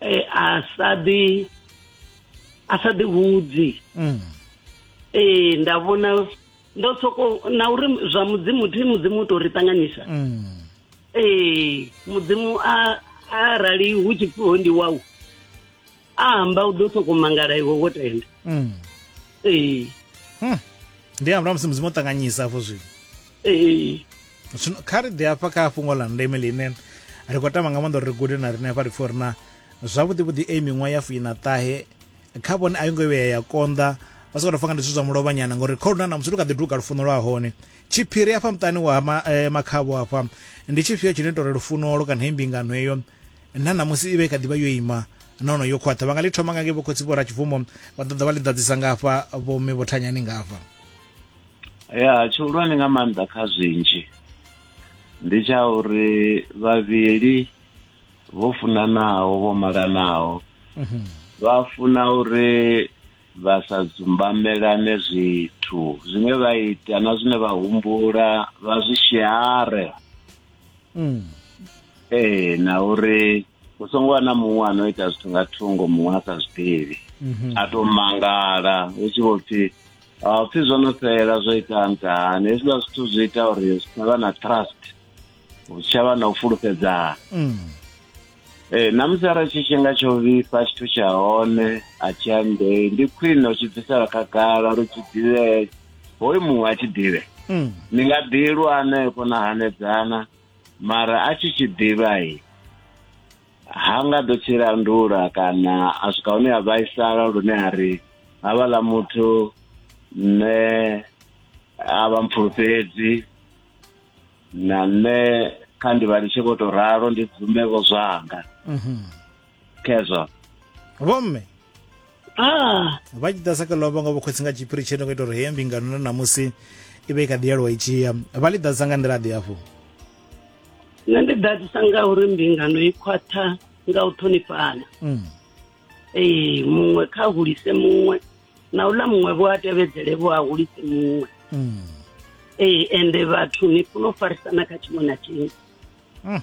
eh, a sa ḓi a sa ḓi hudzi mm. ee nda vhona ndo soko na uri zwa mudzimu thi mudzimu u tou ri ṱanganyisa mm. ee mudzimu a arali hu tshi pfiho ndi wau a amba u ḓo soko mangala iwe wo tenda mm. ee hmm. ndi amba musi mudzimu o ṱanganyisa afho zwino ee zwino kha ri ḓi hafha kha fhungo ḽa ndeme ḽine ri khou tama nga maanḓa uri ri gude na riṋe hafha ri pfhe uri na zwavhuḓi vhuḓi a miṅwaha ya fuina ṱahe kha vhone a yo ngo vhuya ya konḓa vha sokou fanga ndi zwithu zwa mulovhanyana ngori kha luna na musi lu kha ḓi duga lufuno lwa hone tshiphiri hafha muṱani wa ma, eh, makhavho hafha ndi tshifhio tshine tori lufunolo kana he mbingano heyo na namusi i vha i kha ḓi vha yo ima nono yo khwaṱha vha nga ḽi thoma nga ngei vhokhotsi vho ra tshibvumo vha ḓoḓa vha ḽi ḓadzisa ngafha vhomme vho thanyani ngafha ya tshihulwane nga maanḓa kha zwinzhi ndi tsha uri vhavhili vho funanaho vho malanaho mhm. vha funa uri vha sa dzumbamelane zwithu zwine vha ita na zwine vha humbula vha zwi share mm. ee na uri hu songo vha na muṅwe a no ita zwithu nga thungo muṅwe a sa zwi ḓivhi mhm. a tou mangala hu tshi vho pfhi ha pfhi zwo no fhela zwo ita ntahani hezwiḽa zwithu zwi ita uri zwi tshavha na trust hu tshavha na u fulufhedzana mm. ee namusi arali tshifhinga tsho vhifha tshithu tsha hone a tshi andei ndi khwine u tshi bvisela khagala uri tshi ḓivhee hoyu muṅwe a tshi ḓivhe mm. ni nga ḓilwa hanefho na hanedzana mara a tshi tshi ḓivha i ha nga ḓo tshi landula kana a swika hune a vhaisala lune a ri havhaḽa muthu nṋe a vha mpfulufhedzi na nṋe kha ndi vha litshe vho to ralo ndi bvume vho zwanga mhm. khezwa vhomme ah vha tshi ḓa sa kha lovha nga vhukhotsi nga tshiphiri tsheno nga ita uri heyo mbingano na namusi i vha i kha ḓi yalwa i tshiya vha ḽi ḓadza nga nḓila ḓi hafhu nṋe ndi ḓadzisa nga uri mbingano i khwaṱha nga u ṱhonifhana mm. ee muṅwe kha hulise muṅwe na uḽa muṅwe vho a tevhedzele vho a hulise muṅwe mm. ee ende vhathu ni funa u farisana kha tshiṅwe na tshiṅwe mm.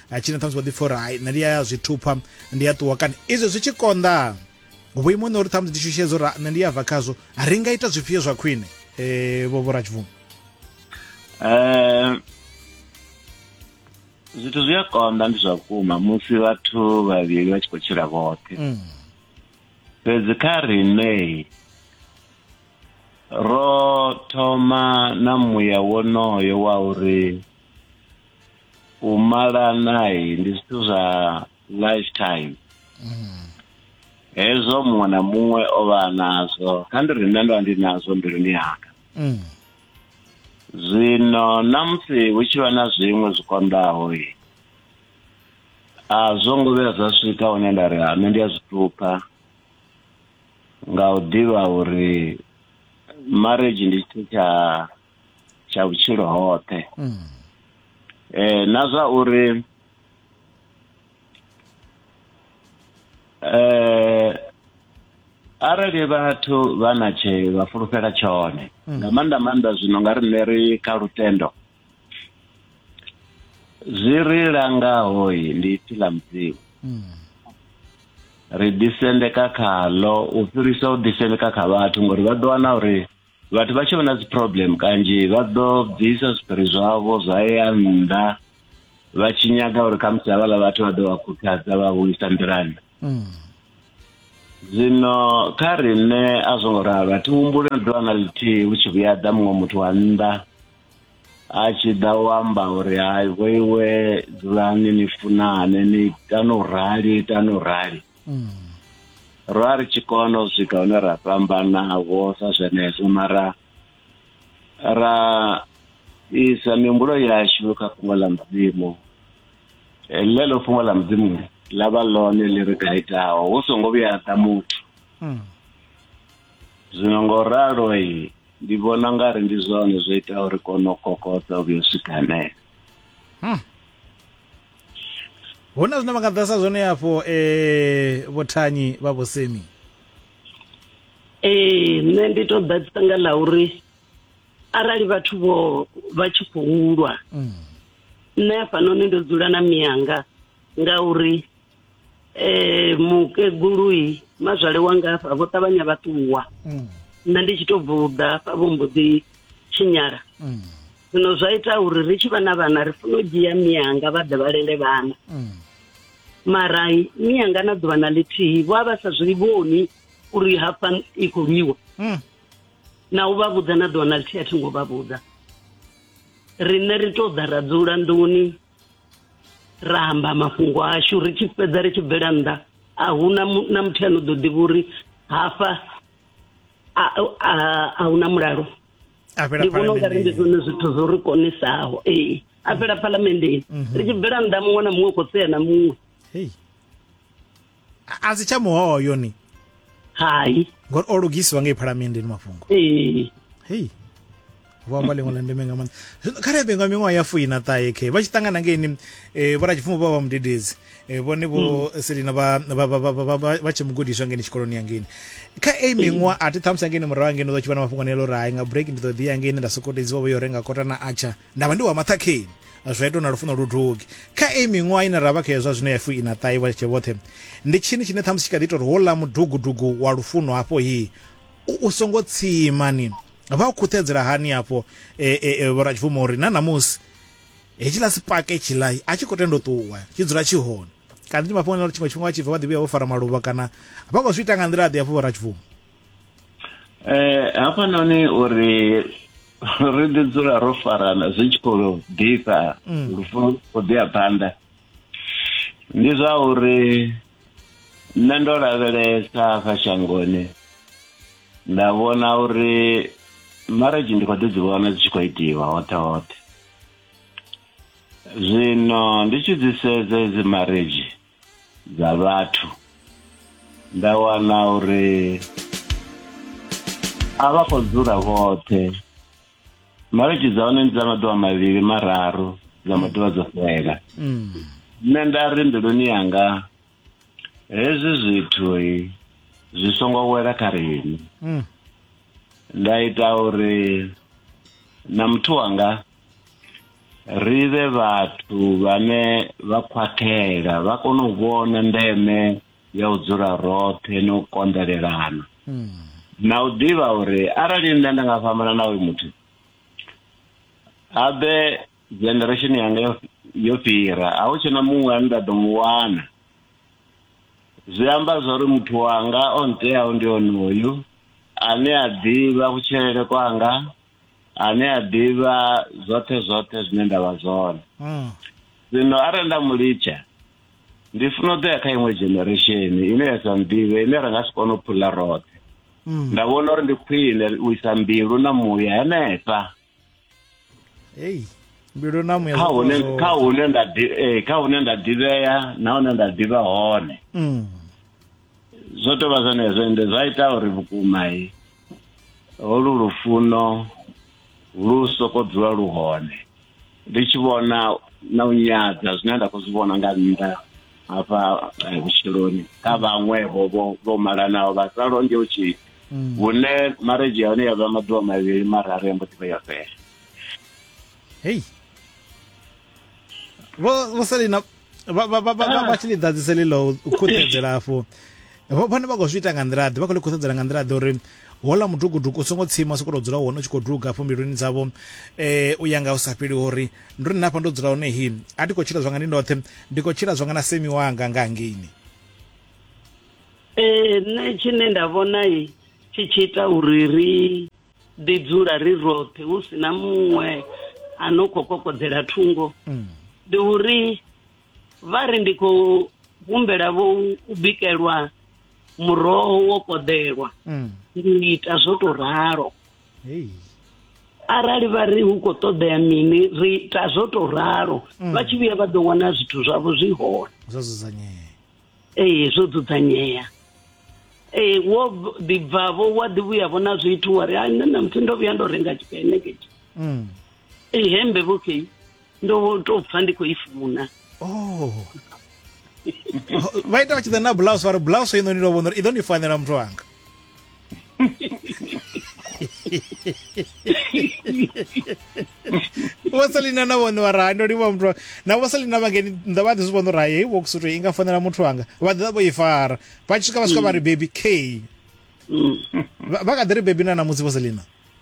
a tshina ṱhamusi vha ḓi pfa uri hai nṋe ndi ya zwi thupha ndi ya ṱuwa kana izwo zwi tshi konḓa vhuimo ne uri ṱhamusi ndishushedza uri nṋe ndi ya bva khazwo ri nga ita zwifhio zwa khwine um vho vhorachibvumo um zwithu zwi a konḓa ndi zwa vhukuma musi vhathu vhavhili vha tshi khou tshila vhoṱhe mm. fhedzi kha riṋe ro thoma na muya wonoyo wa uri u malana ndi zwithu zwa lifetime mm. hezwo muṅwe na muṅwe o vha nazwo kha ndi ri nṋe ndo vha ndi nazwo mbiluni yanga mm. zwino na musi hu tshi vha na zwiṅwe zwi konḓaho i a zwo ngo vhuya zwa swika hune nda ri nṋe ndi a zwi ṱupha nga u ḓivha uri marriage ndi tshithu tsha tsha vhutshilo hoṱhe mm. eh na zwa uri eh arali vhathu vha na tshe vha fulufhela tshone mm. nga maanḓa maanḓa zwino nga riṋe ri kha lutendo zwi ri langaho ndi ipfi ḽa mudzimu mm. ri ḓisendeka khaḽo u fhirisa u ḓisendeka kha vhathu ngori vha ḓo wana uri vhathu vha tshi vha na dzi problem kanzhi vha ḓo bvisa zwiphiri zwavho zwa ya nnḓa vha tshi nyaga uri khamusi havhala vhathu vha ḓo vha khuthadza vha vhuisa nḓilani mm. zwino kha riṋe a zwo ngo ralo a thi humbuli na ḓuvha na ḽithihi hu tshi vhuya ḓa muṅwe muthu wa nnḓa a tshi ḓa u amba uri hai vhoiwe dzulani ni funane ni itani u rali itani u rali mm. ro a ri tshi kona u swika hune ra fhambanavho sa zwenezwo mara ra isa mihumbulo yashu kha fhungo ḽa mudzimu ḽeḽo fhungo ḽa mudzimu ḽa vha ḽone ḽi ri gaitaho hu songo vhuya ḓa muthu hmm. zwino ngo ralo ndi vhona nga ri ndi zwone zwo itaho ri kone u kokodza u vhuya u swika hanefho hmm. hu na zwine vha nga ḓasa zwone afho um eh, vhothanyi vha vhosemi ee nṋe ndi to ḓadzisa nga ḽa uri arali vhathu vho vha tshi khou lwa mm. nṋe hafhanoni ndo dzula na miyanga ngauri eh mukegului mazwale wanga hafha vho ṱavhanya vha ṱuwa mm. nṋe ndi tshi to bvuda hafha vho mbo ḓi tshinyala mm. zwino zwa ita uri ri tshi vha na vhana ri funa u dzhia miyanga vha ḓe vha lele vhana mm. mara miyanga na ḓuvha na ḽithihi vho a vha sa zwi vhoni uri hafha i khou lwiwa na u vha vhudza na ḓuvha na ḽithihi a thi ngo vha vhudza riṋe ri to ḓa ra dzula nḓuni ra amba mafhungo ashu ri tshi fhedza ri tshi bvela nnḓa a huna na muthu ano ḓo ḓivha uri hafha a huna mulalo ndi vhona ungari ndi zwone zwithu zwo ri konisaho ee a fhela phalamendeni mhm. ri tshi bvela nnḓa muṅwe na muṅwe u khou sea na muṅwe a si tsha muhoyo ni hai ngori o lugisiwa ngei phalamenndeni mafhungo ee hei vho amba ḽiṅwe ḽa ndeme nga maanḓa zwino kha rebengwa miṅwaha ya fuina ṱahe khe vha tshi ṱangana ngeini um eh, vhoratshipfumo vha vha mudededzi eh, vhone vho mm. selina vha tshe mugudiswa ngeini tshikoloni ya ngeini kha ei mm. miṅwaha a thi ṱhamusi angeini murahu angeini ḓo tshi vha na mafhungo nelo uri hai nga break ndi ḓo ḓiya ngeini nda sokotedziwa vho yo renga kota na atsha nda vha ndi wa maṱhakheni zwa ita na lufuno lu dugi kha iyi miṅwaha ine ra vha khayo zwa zwino ya fu ina ṱahi vha tshe vhoṱhe ndi tshini tshine ṱhamusi tshi kha ḓi ita uri houḽa mudugudugu wa lufuno hafho hi u songo tsimani vha u khuṱhedzela hani hafho e, e, e, vhoratshibvumo uri na ṋamusi hetshiḽa sipake tshiḽa a tshi khou tenda u ṱuwa tshi dzula tshi hone kana ndi mafhungo uri tshiṅwe tshifhinga vha tshi bva vha ḓivhuya vho fara maluvha kana vha khou zwi ita nga nḓila ḓi hafho vhoratshibvumo eh hafhanoni uri ri ḓi dzula ro farana zwi tshi khou ḓifha mm. lufuno khou ḓi ya phanḓa ndi zwa uri nṋe ndo lavhelesa kha shangoni nda vhona uri marriage ndi khou ḓi dzi vhona dzi tshi khou itiwa hoṱhe hoṱhe zwino ndi tshi dzi sedza hedzi marriage dza vhathu nda wana uri a vha khou dzula vhoṱhe marriage dza hone ndi dza maḓuvha mavhili mararu dza maḓuvha dzo fhela nṋe nda ri mbiluni yanga hezwi zwithu zwi songo wela kha riṋe nda ita uri na muthu wanga ri vhe vhathu vhane vha khwathela vha kone u vhona ndeme ya u dzula roṱhe na u konḓelelana na u ḓivha uri arali nṋe nda nga fhambana na uyu muthu habe generation yanga yo- yo fhira a hu tshena muṅwe ane nda ḓo mu wana zwi amba zwa uri muthu wanga o nteaho ndi onoyu ane a ḓivha kutshilele kwanga ane a ḓivha zwoṱhe zwoṱhe zwine nda vha zwone mm. zwino arali nda mu litsha ndi funa u ḓo ya kha iṅwe generation ine ya sa nḓivhe ine ra nga si kone u phula roṱhe mm. nda vhona uri ndi khwine u isa mbilu na muya henefha hey mbilu na muya kha hune kha hune nda eh, kha hune nda ḓivhea na hune nda ḓivha hone mm. zwo tou vha zwenezwo ende zwa ita uri vhukuma i holu lufuno lu soko dzula lu hone ndi tshi vhona na u nyadza zwine nda khou zwi vhona nga nnḓa hafha eh, vhutshiloni kha vhaṅwe vho vho malanaho vha sa longe u tshila mm. hune marriage ya hone ya vha maḓuvha mavhili mararu ya mbo ḓi vha yo fela hei vho vho selina vha vha vha vha vha tshi ḽi ḓadzise ḽiḽo u khuṱedzela afho vho- vhone vha khou zwi ita nga nḓila ḓe vha khou ḽi khuṱedzela nga nḓila ḓe uri hola mudugudugu u songo tsima u sokou dzula hone u tshi khou duga afho mbiluni dzavho um u ya nga u sa fheli uri ndi uri nṋe afha ndo dzula hone hi a ndi khou tshila zwanga ndi ndoṱhe ndi khou tshila zwanga na semi wanga nga hangeini ee nṋe tshine nda vhona i tshi tshi ita uri ri ḓi dzula ri roṱhe hu si na muṅwe a no khou kokodzela thungo mm. ndi uri vha ri ndi khou humbela vho u bikelwa muroho wo koḓelwa mm. ndi ita zwo to ralo arali vha ri hu khou ṱoḓea mini ri ita zwo to ralo mm. vha tshi vhuya vha ḓo wana zwithu zwavho zwi hone zwo dzudzanyea ee zwo dzudzanyea ee wo ḓibvavho wa ḓi vhuyavho na zwithu wa ri ha nṋe namusi ndo vhuya ndo renga tshipeneketi mm. ee hembe vhokei ndo to pfa ndi khou i funa oh. vha ita vha tshi ḓa na blouse vha ri blouse inoni ndo vhona uri i ḓo ni fanela muthu wanga vho selina na vhone vha raha ndo livha muthu na vho selina vha ngeni nnḓa vha ḓi zwi vhona uri hayi heyi worksuit i nga fanela muthu wanga vha ḓi ḓa vho i fara vha tshi swika vha swika vha ri baby k vha vha kha ḓi ri baby na ṋamusi vho selina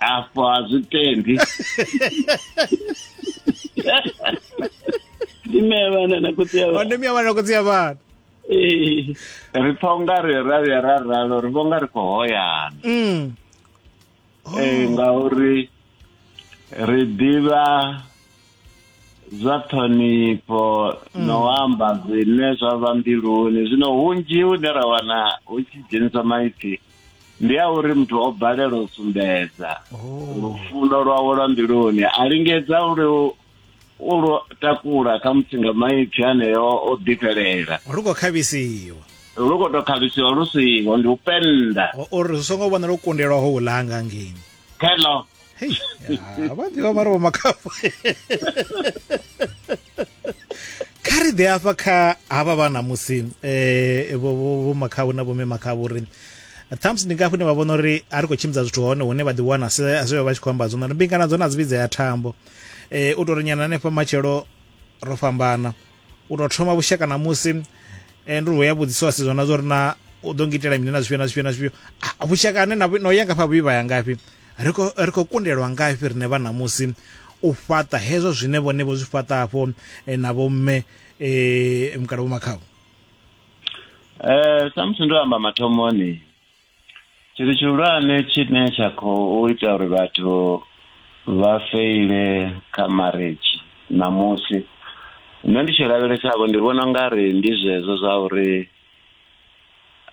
afho a zwi tendi ndi mme ya vhana na khotsi ya vhana wandemi ya vhana khotsi ya vhana Ee. ri pfa unga ri ra vhuya ra ralo ri vho nga ri khou hoyana Mm. Eh, ngauri ri ḓivha zwa ṱhonifho mm. no amba zwine zwa vha mbiluni zwino hunzhi hune ra wana hu tshi dzhenisa maipfi ndi a uri muthu o balelwa u sumbedza oh. lufuno lwawe lwa mbiluni a lingedza uri u lwo takula kha musi nga maipfi aneyo o ḓifhelela lu khou khavhisiwa lu khou tou khavhisiwa lu siho ndi u penda uri zwi songo vhona lwo kundelwaho u langa ngeni hello hei ya, vha ḓivha vha ri vho makhafo kha ri ḓe afha kha havha vha ṋamusi um eh, vho makhavho na vhome makhavho uri thumbs ndi ngafho ine vha vhona uri a ri khou tshimbidza zwithu hone hune vha ḓiwana zwivha vha tshi khou amba zwona ri mbingana dzo na dzi vhidza ya thambo um u tou ri nyana hanefha matshelo ro fhambana u tou thoma vhushaka na musi eh, ndi ri ya vhudziso a sedzwa na zwa uri na u ḓo ngitela mini na zwifhio na zwifhio na zwifhio Ah, vhushaka ane na vhu- no ya ngafha vhuivha ya ngafhi ri khou- ri khou kundelwa ngafhi rine vha ṋamusi u fhaṱa hezwo zwine vhone vho zwi fhaṱa hafho eh, na vhomme um mukala vhomakhavho Eh samusi ndo amba mathomoni Tshithu tshihulwane tshine tsha khou ita uri vhathu vha feile kha marriage ṋamusi nṋe ndi tshi lavhelesa vho ndi vhona ungari ndi zwezwo zwa uri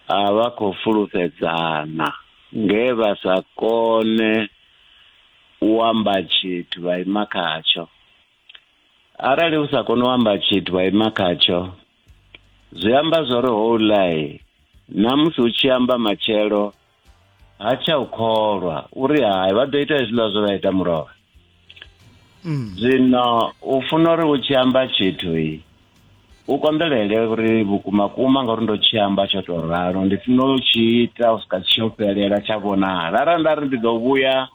a vha khou fulufhedzana nge vha sa kone u amba tshithu vha ima khatsho. Arali u sa koni u amba tshithu vha ima khatsho zwi amba zwo ri houlai na musi u tshi amba matshelo ha tsha u kholwa uri hai vha ḓo ita hezwiḽa zwe vha ita mulovha mm. zwino u funa uri u tshi amba tshithu i u konḓelele uri vhukuma kuma ngauri ndo tshi amba tsho tou ralo ndi funa u tshi ita u swika tshi u fhelela tsha vhonala arali nda ri ndi ḓo vhuya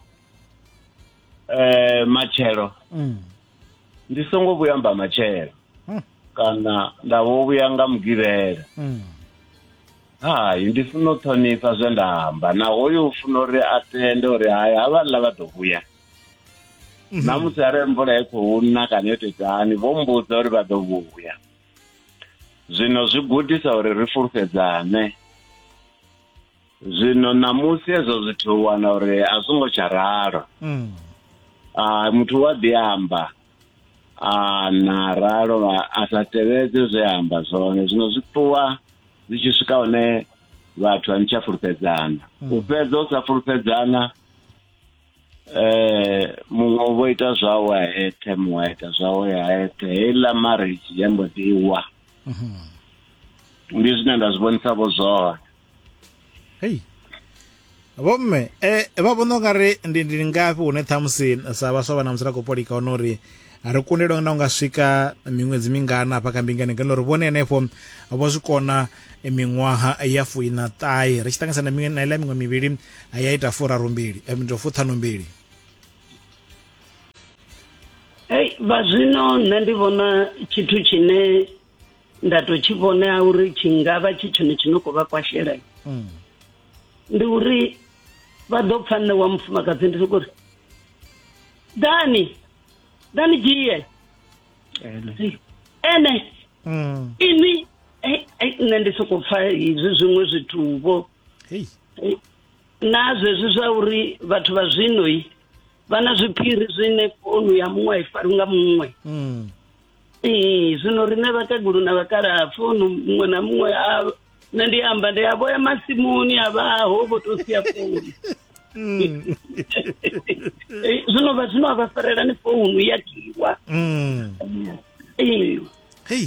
um matshelo mm. ndi songo vhuya mba matshelo kana nda vho vhuya nga mugivhela hai ndi funa u ṱhonifha zwe nda amba na hoyo u funa uri a tende uri hai havhaḽa vha ḓo vhuya na musi arali mvula i khou na kana yo tetani vho mbudza uri vha ḓo vhuya zwino zwi gudisa uri ri fulufhedzane Zwino ṋamusi hezwo zwithu u wana uri a zwo ngo tsha ralo. Mm. Ah, muthu u a ḓi amba a na ralo vha- a sa tevhedze zwe a amba zwone zwino zwi ṱuwa zwi tshi swika hune vhathu a ni tsha fulufhedzana u fhedza u sa fulufhedzana eh muṅwe vho ita zwawe a eṱhe muṅwe a ita zwawe a eṱhe heiḽa marriage ya mbo ḓi wa mhm. ndi zwine nda zwi vhonisa vho zwone hei vhomme um eh, vha vhona u nga ri ndi ndi ngafhi hune ṱhamusi sa vhaswa vha na musi ra khou polika hone uri ri kundelwa na unga swika miṅwedzi mingana hafha kha mbingani ngeno ri vhone henefho vho zwi kona miṅwaha ya fuina ṱahe ri tshi ṱanganyisa na miṅwe na ila miṅwe mivhili ya ita furaru mbili eh, ndo fuṱhanu mbili hey vha zwino nṋe ndi vhona tshithu tshine nda to tshi vhonea uri tshi ngavha tshi tshone tshi no khou vha kwashela mm. ndi uri vha ḓo pfa nṋe wa mufumakadzi ndi sokori dani na ne gye yɛ ɛnɛ ini na ndi soko pfa izwi zwiṅwe zwituvho na zwezwi zwa uri vhathu vha zwinoi vha na zwiphiri zwine founu ya muṅwe a i fari nga muṅwe mm. Ee, zwino riṋe vhakegulu na vhakalaha pfunu muṅwe na muṅwe a nṋe ndi amba ndi a vhoya masimuni a vhaho vho to sia founu Mm. Eh, zwino vha zwino a vha farelani founu ya kiwa Mm. Ee. Hey.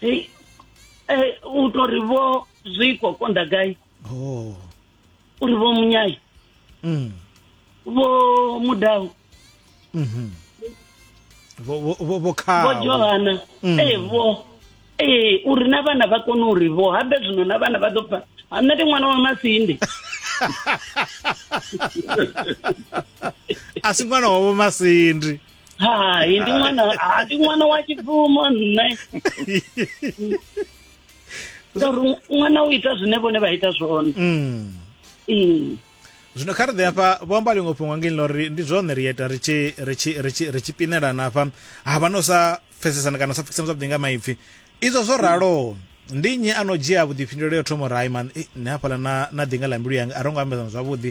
eh, u to ri vho zwiko konda gai oh. u ri vho munyayi mm. vho mudau mm -hmm. vho vho vho vho khawo vho johana mm. eh vho ee uri na vhana vha kone uri vho habe zwino na vhana vha ḓo pfa ha nṋe ndi ṅwana wa masindi a si ṅwana wavho masindi hai ndi ṅwana ha ndi ṅwana wa tshibvumo nṋe ngauri ṅwana u ita zwine vhone vha ita zwone Mm. Mm. zwino kha ri ḓe hafha vho amba ḽiṅwe fhungo ngei ḽori ndi zwone ri ita ri tshi ri tshi ri tshi ri tshi pinelana hafha ha vha no sa pfesesana kana u sa pfukisana zwavhuḓi nga maipfi izwo zwo raloho ndi nnyi a no dzhia vhuḓifhinduleli ya u thoma uri hai man eh, nṋe hafhaḽa na na ḓinga ḽa mbilu yanga a ro ngo ambedzana zwavhuḓi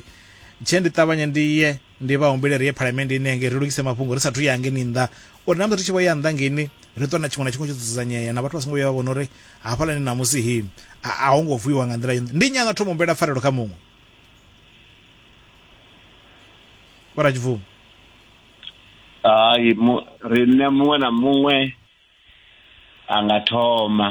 tshee ndi ṱavhanye ndi ye Ndi vha humbele ri ye Phalamennde ine ya ngei ri lugise mafhungo ri sa athu ya ngeni nnḓa uri na musi ri tshi vho ya nnḓa ngeni ri ṱuwe na tshiṅwe na tshiṅwe tsho dzudzanyea na vhathu vha songo vhuya vha vhona uri hafhaḽani ṋamusi hi a a ho ngo vuiwa nga nḓila yone. Ndi nnyi a nga thoma humbela pfarelo kha muṅwe? Vho Ratshibvuma. Hai, mu, riṋe muṅwe na muṅwe a nga thoma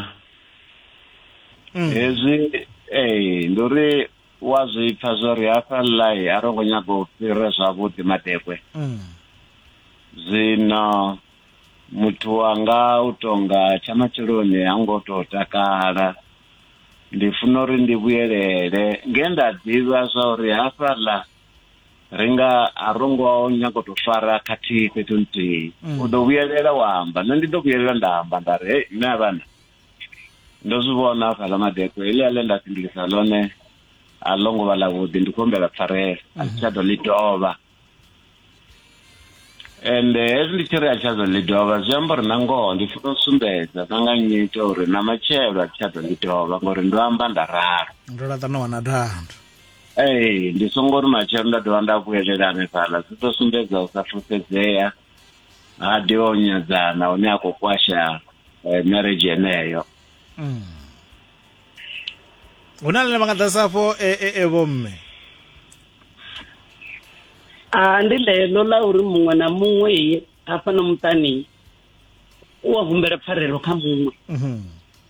mm. hezwi ee ndi uri wa zwi pfa zwo ri hafha ḽai a ro ngo nyaga u fhira zwavhuḓi madekwe mm. zwino muthu wanga u tonga tsha matsheloni ha ngo tou takala ndi funa uri ndi vhuyelele nge nda ḓivha zwa uri hafhaḽa ri nga a ro ngo nyago tou fara khathihi fhethu nthihi mm. u ḓo vhuyelela wa amba nṋe ndi ḓo vhuyelela nda amba nda ri hei mme a vhana ndo zwi vhona hafhaḽa madekwe heḽi a ḽe nda fhindulisa ḽone a ḽo ngo vha ḽavhuḓi ndi khou humbela pfarela a si tsha ḓo ḽi dovha ende hezwi ndi tshi ri a tsha ḓo ḽi dovha zwi amba uri na ngoho ndi funa u sumbedza na nga nyito uri na matshelo a tsha ḓo ḽi dovha ngori ndo amba nda ralo ndo laṱa no wana dando ee ndi songo ri matshelo nda dovha nda vhuyelela hanefhaḽa zwi ḓo sumbedza u sa fulufhedzea ha ḓivha o nyadzana hune a khou kwasha eh, marriage yeneyo mm. hu na ḽine vha nga ḓasa afho e, e, e vhomme a ah, ndi ḽeḽo ḽa uri muṅwe na muṅwe hafha na muṱani u a humbela pfarelo kha muṅwe mhm.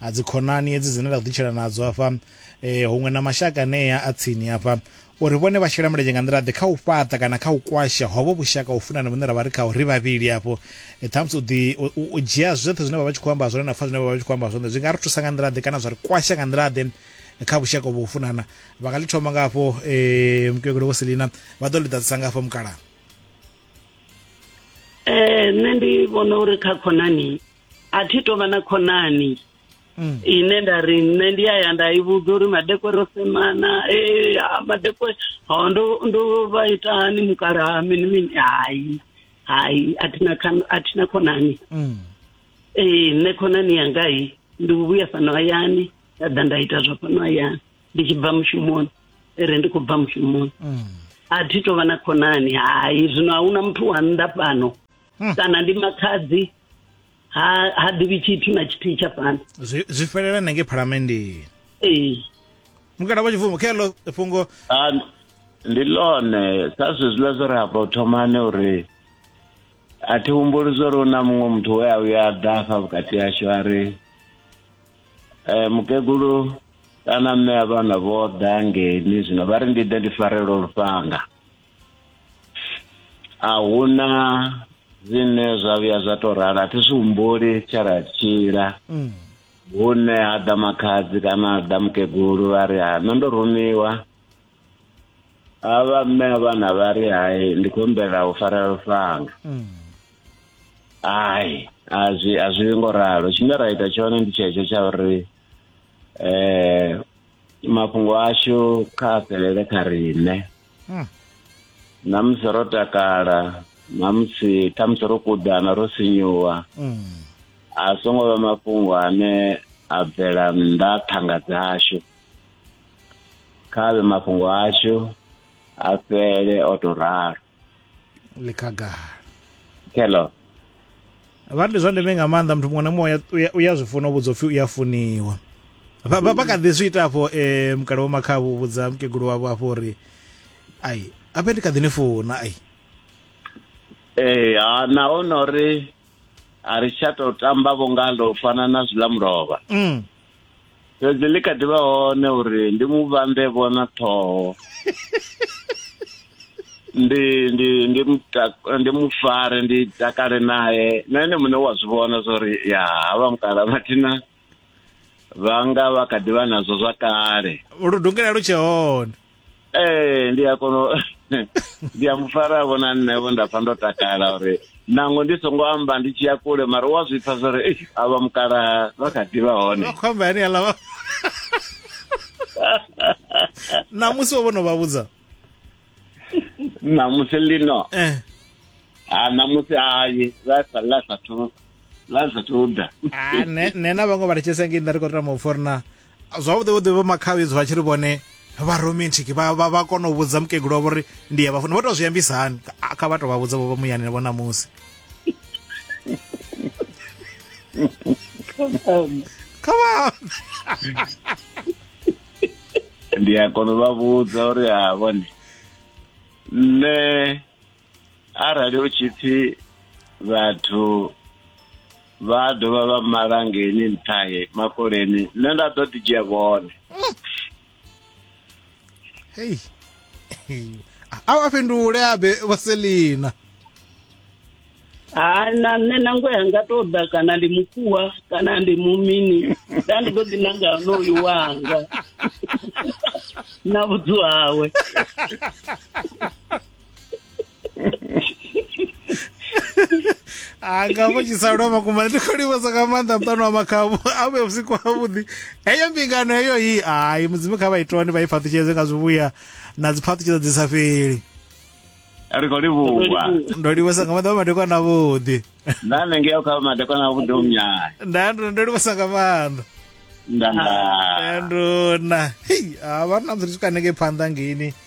a dzikhonani hedzi dzine ra ḓitshela nadzo afha eh, huṅwe na mashaka anea a tsini afha uri vhone vha shela mulenzhe nga nḓila ḓe kha u fhaṱa kana kha u kwasha hovho vhushaka u funana vhune ra vha ri khao ri vhavhili afho e, ṱhamusi u ḓi u dzhia zwoṱhe zwine vha vha tshi khou amba zwone na pfa zwine vha vha tshi khou amba zwone zwi nga ri thusa nga nḓila ḓe kana zwa ri kwasha nga nḓila ḓe e, kha vhushaka uvho u funana vha nga ḽi thoma nga afho um e, mukegulu vho selina vha ḓo ḽi ḓadzisa nga afho mukala um nṋe ndi vhona uri kha khonani a thi tovha na khonani mm. ine nda ri nṋe ndi ya ya nda i vhudza uri madekwe ro semana e madekwe ho ndo ndo vha ita hani mukala ha mini mini hai hai a thina a thina khonani mm. ee nṋe khonani yanga i ndi vhuya fhano hayani nda ḓa nda ita zwa fhano hayani ndi tshi bva mushumoni ere ndi khou bva mushumoni mm. a thi tovha na khonani hai zwino a huna muthu wa nnḓa fhano mm. kana ndi makhadzi ha ha ḓivhi tshithu na tshithihi tsha fhano zwi fhelela na ngei phalamenndeni ee mukalaho tshifumbu kha ḽo fhungo ndi ḽone sa zwi zwiḽa zwo ri hafha u thomane uri a thi humbuli zwo ri hu na muṅwe muthu we a vhuya a ḓa afha vhukati hashu a ri um mukegulu kana mme a vhana vho ḓa ngeni zwino vha ri ndi ḓe ndi farelwa lufhanga a huna zwine zwa vhuya zwa to rala a thi zwi humbuli tshe ra tshila mm. hune ha ḓa makhadzi kana ha ḓa mukegulu vha ri ha nṋe ndo rumiwa a vha mme a vhana vha ri hai ndi khou humbela u fara lufhanga mm. hai a zwi a zwi ngo ralo tshine ra ita tshone ndi tshetsho tsha uri um mafhungo ashu kha a fhelele kha riṋe Hmm. na musi ro takala na musi khamusi ro kuḓana ro sinyuwa Mm. a songo vha mafhungo ane a bvela nnḓa thanga dzashu kha vhe mafhungo ashu a fhele o to ralo ḽi khagala hello vha ndi zwa ndeme nga maanḓa muthu muṅwe na muṅwe u ya zwi funa u vhudzwa upfhi u ya funiwa vha kha ḓi zwi ita afho um mukala wo makhavho u vhudza mukegulu wavho afho uri ai ape ndi kha ḓi ni funa ai ee ha naho na uri a ri tsha tou tamba vho ngalo u fana na zwiḽa mulovha mm. fhedzi ḽi kha ḓi vha hone uri ndi mu vhambe vhona ṱhoho ndi ndi ndi ndi mu fare ndi takale naye na ene muṋe wa zwi vhona zwa uri ya havha mukala mathina vha nga vha kha ḓi vha nazwo zwa kale lu dungela lu tshe hone ee ndi a kono ndi a mufara vho na nṋe vho nda pfa ndo takala uri nango ndi songo amba ndi tshi ya kule mara wa zwi pfa zwa uri a vha mukala vha kha ḓivha hone vha khou amba yani aḽa vha ṋamusi wo vhono vha vhudza ṋamusi lino eh ha ṋamusi hayi ḽa sa ḽa sathu ḽa sathu ḓa ah ne ne na vhaṅwe vha litshesa ngei nda ri khou tama u forna zwavhuḓi vhuḓi vho makhavi zwi vha tshi ri vhone vha romantic vha vha vha kona u vhudza mukegulu wavho uri ndi ya vhafuna vho tou zwi ambisa hani kha vha tou vha vhudza vho muyani vho ṋamusi come on ndi a kona u vha vhudza uri ha vhone nṋe arali hu tshi pfi vhathu vha dovha vha mala ngeni nṱhahe makoleni nṋe nda ḓo ḓi dzhia vhone hei a vha fhindule abe vaselina ha na nṋe nango yanga to ḓa kana ndi mukuwa kana ndi mumini nda ndi ḓo ḓi nanga honoyu wanga na vhudzu hawe anga vho tshisalo makuma ndi khou livhesa nga maanḓa muṱano wa makhabu a vhe vhusiku havhuḓi heyo mbingano heyo i hai mudzimu kha vha itone vha i phaṱutshedze nga zwivhuya na dzi phaṱutshedzo dzi sa fheli ri khou livhuwa ndo livhesa nga maanḓa vha madekwana avhuḓi nda nengeo kha madekwana avhuḓi umnyaya nda ndo ndo livhesa nga maanḓa nda nduna hei a vha na musi ri swika hanengei phanḓa ngeni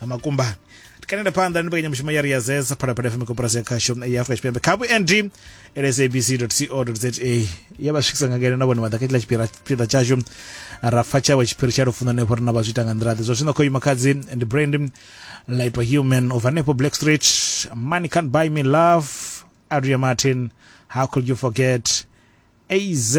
na makumbani tikanenda phanḓa ndi mbekanyamushumo ya ri ya zesa phalaphala fm koporasi ya khasho ya afrika tshipembe kha vhund lsabc co za ya vha swikisa nga ngeno na vhone vha ḓa kha tshila tshipira- tshipiḓa tshashu ra pfa tshawe tshiphiri tsha lufuno hanefho ri na vha zwi ita nga nḓila ḓe zwa zwino khou ima khadzi ndi brand light wa human of hanefho black street money can't buy me love adria martin how could you forget az